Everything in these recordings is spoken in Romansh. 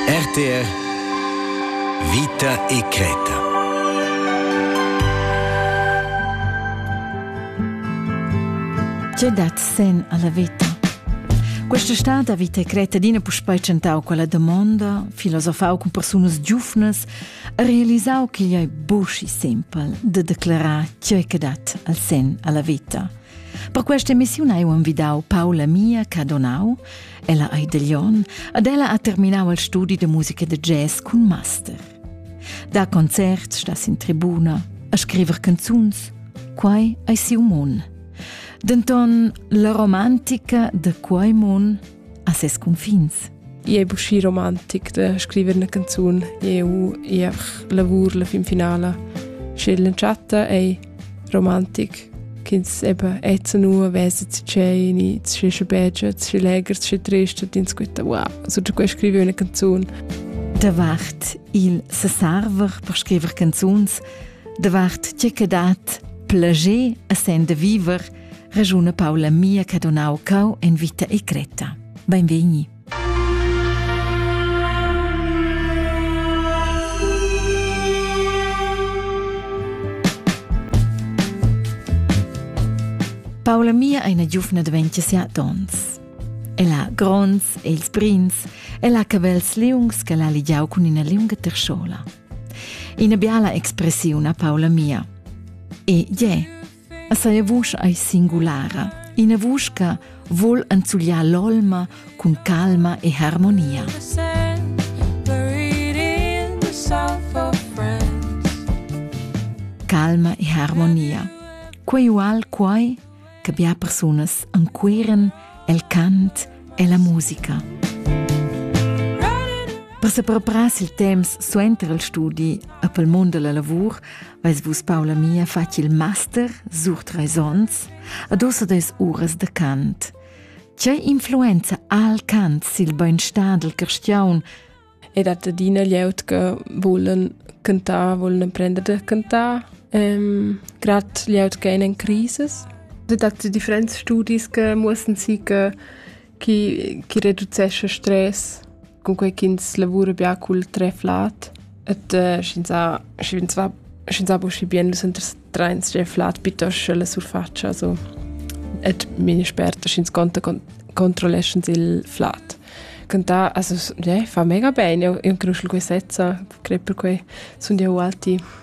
RTR Vita e Creta Tge dat sen alla vita? Questa stad ha vita e creta d'ina puspei tschentau quella domonda, filosofau cun persunas giufnas, ha realisau ch'igl ei buci simpel de declarar tgei che dat al sen alla vita. Per questa emissiun hai envidau Paula Mia Cadonau, Ella ei da Lyon ed ella ha terminau il studi da musica da jazz cun master. Da concerts sta sin tribuna a scriver canzuns. Quai ei siu mun. Denton la romantica de quei mun ha ses confins. I è buschi romantic da scrivere una canzone. Eu, ich einfach lavoro fin finale. Sche la chatta è romantic ch'ins eben jetzt nur weiß zu tscheni zu schi beige zu schi leger zu schi trist ins squitta wow so da quei scrivi una canzone Davart il sesarver per scriver canzuns davart tge che dat plager a sen de viver ragiuna Paula mia che donau cau en vita e creta. Benvegni. Paula mia è una giuvna di 27 onns. El ha gronds e ils brins, el ha cabels liungs che l'ha ligiau cun ina liunga terschola. Ina biala expressiun a Paula mia. E je, A seia vusch ei singulara, ina vusch che vul enzugliar l'olma cun calma e harmonia. Calma e harmonia. Quei ual quai che bia persunas anqueren el cant e la musica. Per se preparar il temps suenter il studi a pel mondo la lavur Veis vus, Paula mia, fatg il master sur treis onns ad ossa des uras de cant. Tgei influenza ha il cant sil beinstar del cristiaun? Ed hat adina glieud che volen cantar, volen emprender de cantar, ähm, grad glieud che in crisis. Das hat die Differenzstudis, die mussten sie chi, chi reducescha stress, cunquai ch'ins lavura bia cul treflat et uh, sch'ins sch'ins va sch'ins va uschi bien nus trains gie flat piuttosto la surfacia so et mine sperta sch'ins conta con controlleschens il flat cantà also yeah, fa mega bene io incruscio questezza credo per quei sun io alti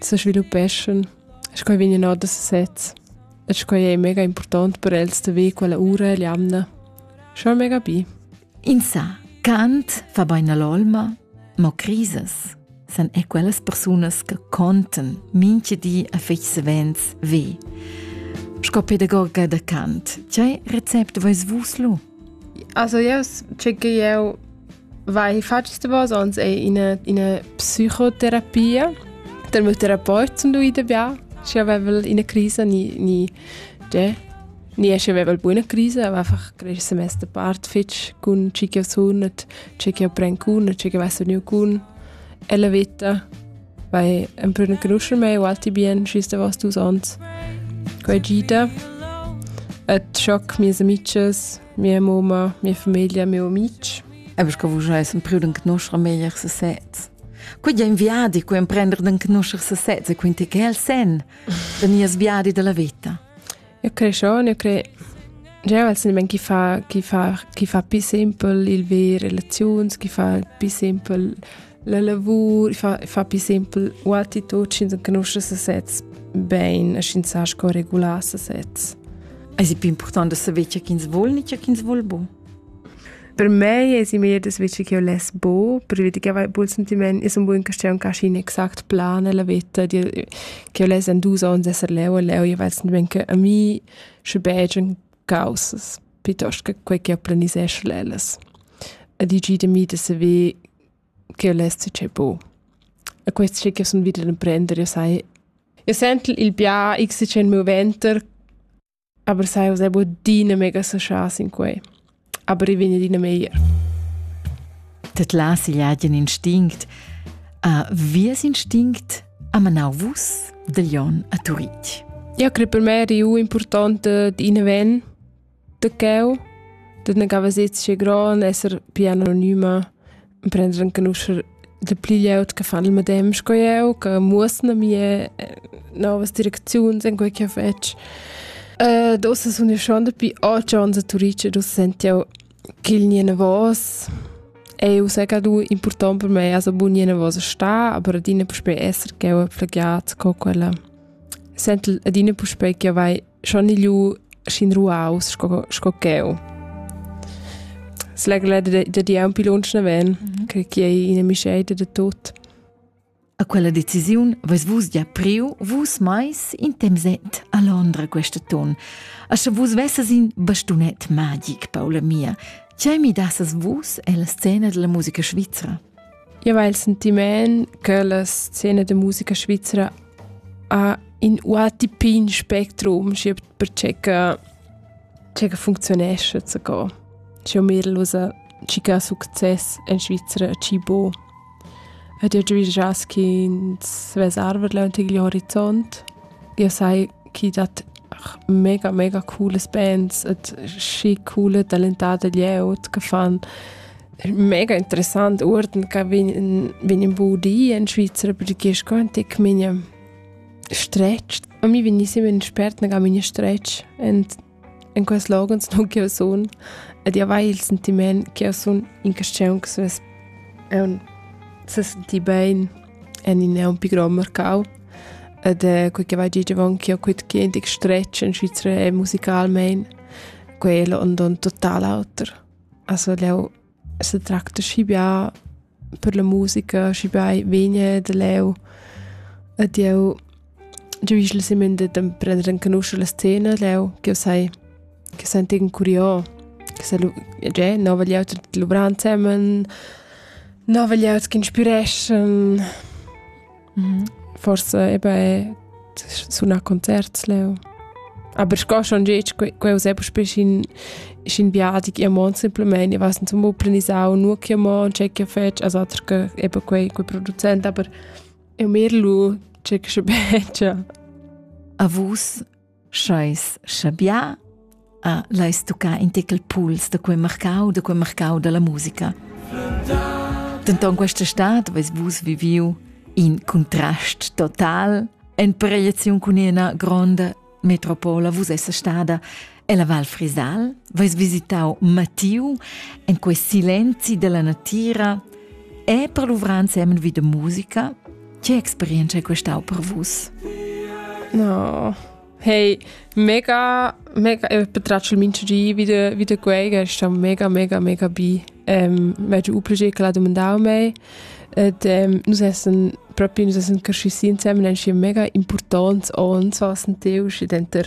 se sviluppeschan sco vegnan or da sezs. E sco è mega important per els da ve quella ura e l'amna. Schon mega bi. In sa, Kant fa beina l'olma, mo crises san è quellas persunas che conten minche di a fetg savens ve. Sco pedagoga da Kant, c'è rezept vois vus lu? Also yes, tge che jeu vai fatg stavos onns è ina ina psichoterapia dal mio therapeut zum lui dabei. Schi avevel ina crisa ni ni tgè ni esci avevel buona crisa, aber einfach cresch semester part fitg cun chi che sun et tge che pren cun e tge che vess vegniu cun ella veta. Vai emprenenuscher mei ualti bien schis davos dus onns. Quei gita. Et schoc mias amices, mia moma, mia famiglia, mio amic. Ebbes che vus essen priu den Knuschrer meglier se sez. Cu ja inviadi cu emprender den Knuschrer se sez e quinti che el sen, den nies viadi della vita. Eu creschon, eu cre Jeu ves nemmen chi fa, chi fa, chi fa pi simpel il ver relaziuns, chi fa pi simpel la lavur, fa, fa pi simpel u attitud, sch'ins enconusce sesez bene, sch'ins sa sco regular sesez. Es è più importante saber ciò ch'ins vuol, nicht ciò ch'ins vuol bu. Per mei esi meglier das vici ch'eu less bo, pervi che avair bun sentimaint es ün bun castieun ch'ha schi ün exact plan nella veta, ch'eu less in dus ons esser leu e leu, io vel sentimaint che a mi sche begian caussas pietost che quai ch'eu planisesch l'ellas. E digì da mi da saver ch'eu less tgei bo. E quest schi ch'eu sun vid ad emprender, io sai, io sent il bia x tgei moventer Aber sai usè bod adina mega associaas in quei. Aber i vegn adina meglier. Dat la sigliagen instinct a vies instinct a manau vus de Lyon a Turitg. Ja, crei per me eri u importante di in ven de cheu, de ne gava sezze gran esser più anonima prendere anche nuscher de pli glieud che fanno il medem sco io, che muossen a mie eh, nuove direzioni in quel che faccio. Uh, da sono io schon dabei oggi an Turice, da sento che il niente was eu sega du important per me also bun jene was sta aber adine puspei esser che ho plagiat co quella sent adine puspei che vai schon ilu schin ruaus sco sco cheu. Slegla da di un pilonch naven, mm -hmm. che chi è ina misceita da tot. A quella decisiun vais vus gia priu vus mais in temset a Londra questa ton. A sche vus vesses in bastunet magic, Paula mia, ce mi dasses vus e la scena della musica svizra? Io hai il sentiment che la scena da musica svizzera ha in UATP in spectrum, schi per che che funzionesce zu go. C'è un Mädel, ci che ha succes in Svizzera, ci bo. Ed io già già che ins svesarver leunt igl horizont. Io sai chi dat mega mega cooles bands et schi coole talentate glieud che fan mega interessant uorden che vegn vegn in budi in Svizra perché sco ein tic mine stretch a mi vegn sempre spert che mine stretch en in quels logens non che sun ed io vai il sentiment che sun in questione che es è un se senti bene en in è un pi grond mercau ed è quei che vai dir avon che ho quit quint stretg in Svizra e musicalmein quello und un total auter. Also leu se tracta schi bia per la musica, schi bia vegna da leu ed jeu Giu igl sieminder d'emprender renconuscher la scena leu, ch'jeu sai, che sentigen curios, che sa lu, tgei, nova glieud luvrar ensemen, nova glieud ch'inspireschan. Forsa eben è sunar concerts leu. Aber sco schon gitg, quei uss eben spiel scin, scin viadi ch'jeu mon simpelmain, ich weiß nicht, zum planisau, nur ch'jeu mon, tgei ch'jeu fetg, also atr che eben quei, quei producent, aber Eu mir lu tschec sche begia. A vus scheis schabià a l'ais tuccà in tecal puls da quei marcau, da quei marcau dalla musica. Denton questa stad veis vus viviu in contrast total en variaziun cun ina gronda Metropola vus essa stada ella Val Frisal, vais visitau Matiu en quei silenzi della natira e per luvrar insieme vi de musica. Che experienza è questau per vus? No. Hey, mega, mega, e per tracciare il minchigi wieder, wieder quei, che sto mega, mega, mega bi. Ähm, maggior un progetto che l'ha domandato a me, Ed ähm, nus essen propi nus essen cresci si insieme ensi mega importants ons was ein teu schi denter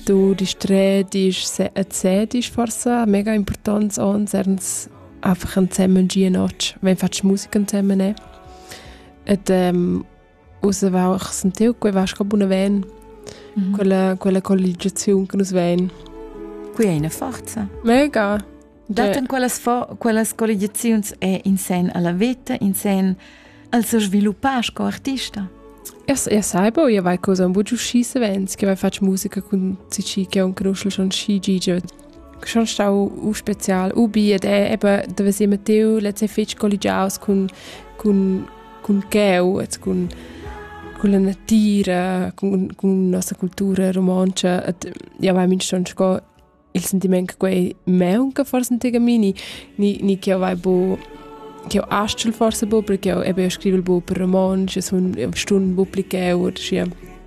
du dich dreh dich erzähl dich forsa mega importants ons ernst einfach ein zusammen gehen wenn fast Musik zusammen ne et ähm, Uss aveva sentiu quei vasca buna ven, mm -hmm. quella, quella colligiaziun che nus vein. Qui è una forza. Mega. Dat en quellas, quellas colligiaziuns è in sen alla vita, in sen al se sviluppar sco artista. Io, io saibo, io vai cosa un bugiu sci savens, che vai faccio musica con cici che on conosce schon sci gigi. schon stau u spezial u bi ed è eben da vesir Matteo letzte fitch colligiaus cun cun cun cheu et cun con la natira con con nossa cultura romanza et ja vai min schon sco il sentiment che quei meunca forse ein tegamini ni ni che vai bo che astral forse bo perché ebe scrivel bo per romanz es un stun bupliceu oder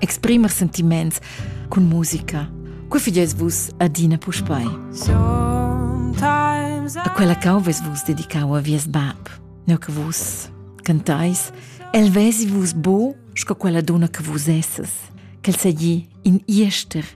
exprimer sentiments cun musica. Cu fidies vus adina puspei? A quella cau ves vus dedicau a vies bab, neu che vus cantais, el vesi vus bo, sco quella donna che vus esses, quel segli in iester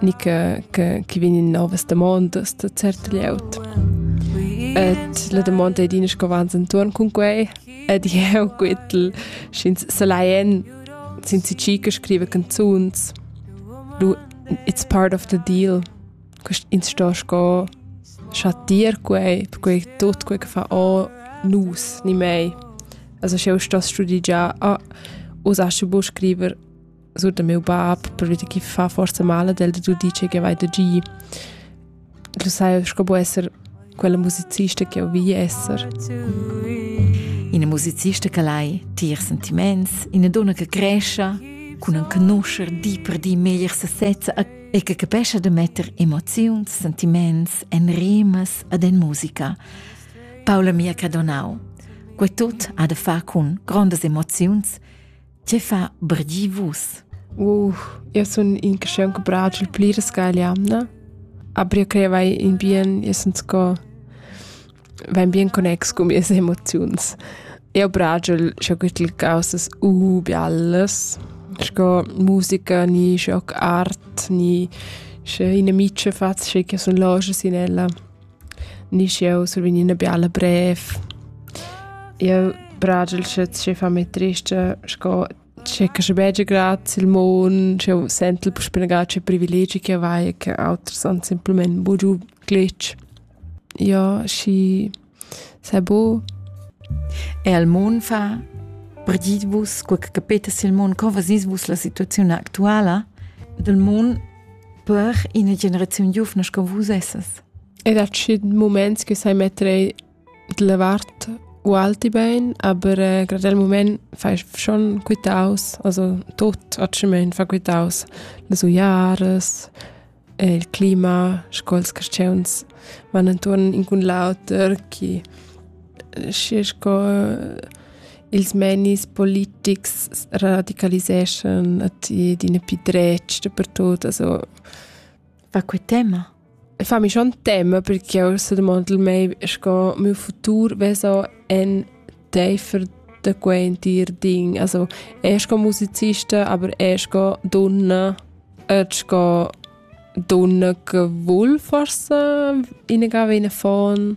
ni che, che, che vegn in novas damondas da cert glieud. Et la domanda è dina scovans intorn con quei ed jeu quittel sch'ins salaien sin si chica scrive canzuns lu it's part of the deal ins sto sco schat dir quei quei tot quei che fa o nus ni mei also scheu sto studi già a usasche bu scriver sut miu bab perché chi fa forse male del tu dice che vai da gi tu sai sco può essere quella musicista che ho vi essere Ina musicista che lai tier sentiments, ina donna che cresce, con un conoscer di per di meglier sesezza e che capesce de metter emozioni, sentiments en rimas ad en musica. Paola mia che donau. Que tot ha de fa con grandes emozions Tge fa brdi vus? Uh, eu sun in caschiun che bragia il pli resca igl jamna. Aber eu crei vai in bien, eu sun sco vain bien connex cun mias emoziuns. Eu bragia sco güttel causas uh biallas, sco musica, ni sco art, ni sche ina micia faz, sche che sun lojas in ella. Nisch jeu survegn ina biala brev. Jeu bragel sche tgei fa mei trista, sco tschecca sche begia graz il mon, sch'jeu sentel puspei gatg privilegi che vai, che auters han semplamain bugiu glitch. Ja, schi sei bo. E al mon fa perdit vus, quei che capetas il mon, co vasis vus la situaziun actuala del mon per ina generaziun giuvna sco vus essas. Ed ha tschient moments che sai mettere della vart u alti bein, aber äh, gerade al moment fai schon quitaus, also tot atschement fa quitaus las uiaras, e il clima, sco'ls caschiuns van intorn in cun l'auter, chi schi sco ils menis politics radicaliseschan at ed in pi dretg dapertut also fa que tema fa mi schon tema perché eu se domandel mei sco miu futur veso en teifer da quei entir ding also er sco musicista aber er sco donna et sco donna che vul forse innegava in fon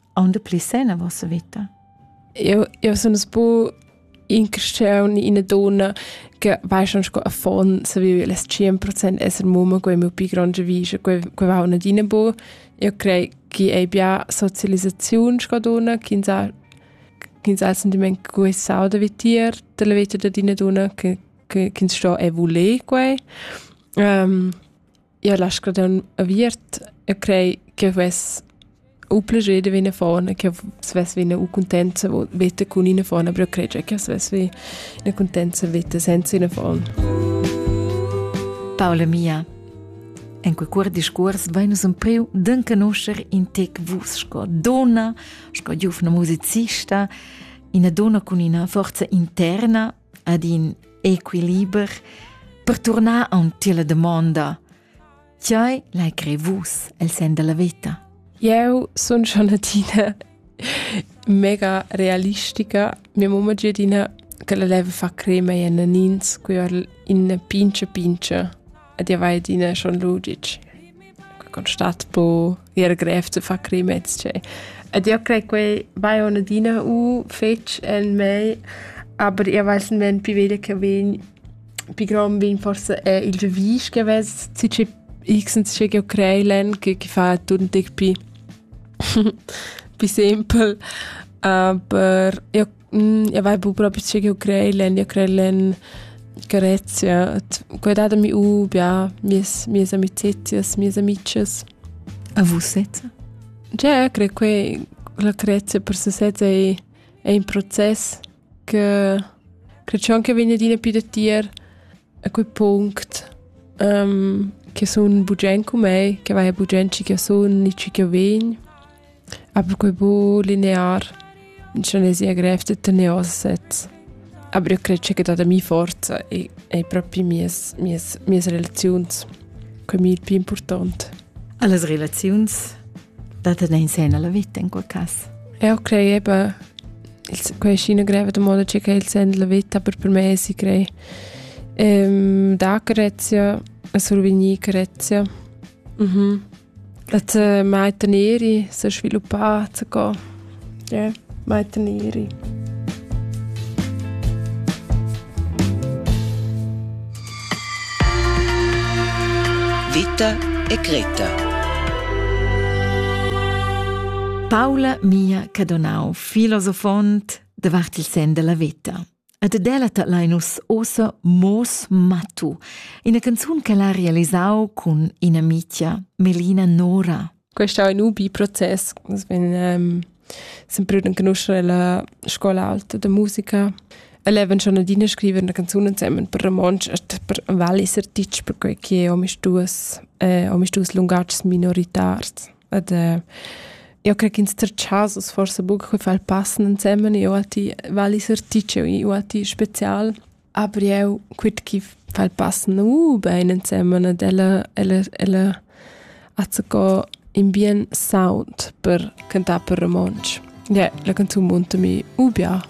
aunde pli sen a vossa vita? Eu, eu sun es bu in cresciun ina donna che va schon sco a fon se vive les 100% esser mumma quei meu pi grande vise quei quei va una dina bu io crei chi ei bia socializzaziun sco donna chi sa chi sa sentiment cui sau da vitir della vita da dina donna che che ins sto e vole quei um, io l'ha scadun aviert e crei che vess u plager de vena fona, che svess vena u contenza veta cun ina fona, però cregia che svess vi ina contenza veta senza ina fona. Paula mia, En quei cuor discuors vai nus empriu d'en canuscher in tec vus sco donna, sco giufna musicista, ina donna cun ina forza interna ad in equiliber per turnar aunc la damonda Tgei l'hai crei vus el sen della veta? Eu sun schon adina mega realistica. Mia mamma è adina che la leva fa crema e nanins, qui or in pince pince. ed jau hai adina schon lu ditg constat po ir grev zu far crimets che ed io crei quei vai on adina u fetg en mei aber io weiß men pi veglia che vegn pi grom vegn forse è il revis che vess ci che x ci che crei len che che fa tun tic pi pi simpel aber io mm, ja vai bu proprio che io crei len io crei len Grezia quei datami u ja mies mies amicizias mies amices a vusezza Ja, cre que la Crezia per sesezza è, è un processo che credo anche viene di più da tier a quel punto um, che sono bugen con me, che vai a bugen ci che sono, ci che ven. Aber quei buc linear, in Cianesia grev da tener ossa sez. Aber io cred che dat a mi forza e ei propi mies, mies, mies relaziuns quei mi il più important. Alles relaziuns dat in sen alla vita in quel caso. Ja, okay, eben. Quei ist in greve da moda che il sen della vita, aber per me si crei. Ähm, da Grezia, a survenir Grezia. Mhm. Mm Dat äh, mai teneri se sviluppar zu gehen. Ja, mai teneri. Vita e Greta. Paula mia Cadonau, filosofont, davart il sen della vita. Ed delata lein nus ossa Moos Matu, ina canzun che l'ha realisau cun ina mitia Melina Nora. Questo è un ubi proces, nus vegn um, sempre riconoscere la scuola alta de musica. E levon schon adina scrivere una canzone insieme per romansch e per vallis artists, perché che ho mis duas, eh, ho mis duas lungatgs minoritars. ed äh, eu crec ins ter chasos forse buca che fal passen ensemen io a ti vali esercizio io a ti spezial aber eu quit chi fal passen uh bein ensemen ed ella ella ella hat se co in bien sound per cantar per romansch yeah, la canzun munta mi ubia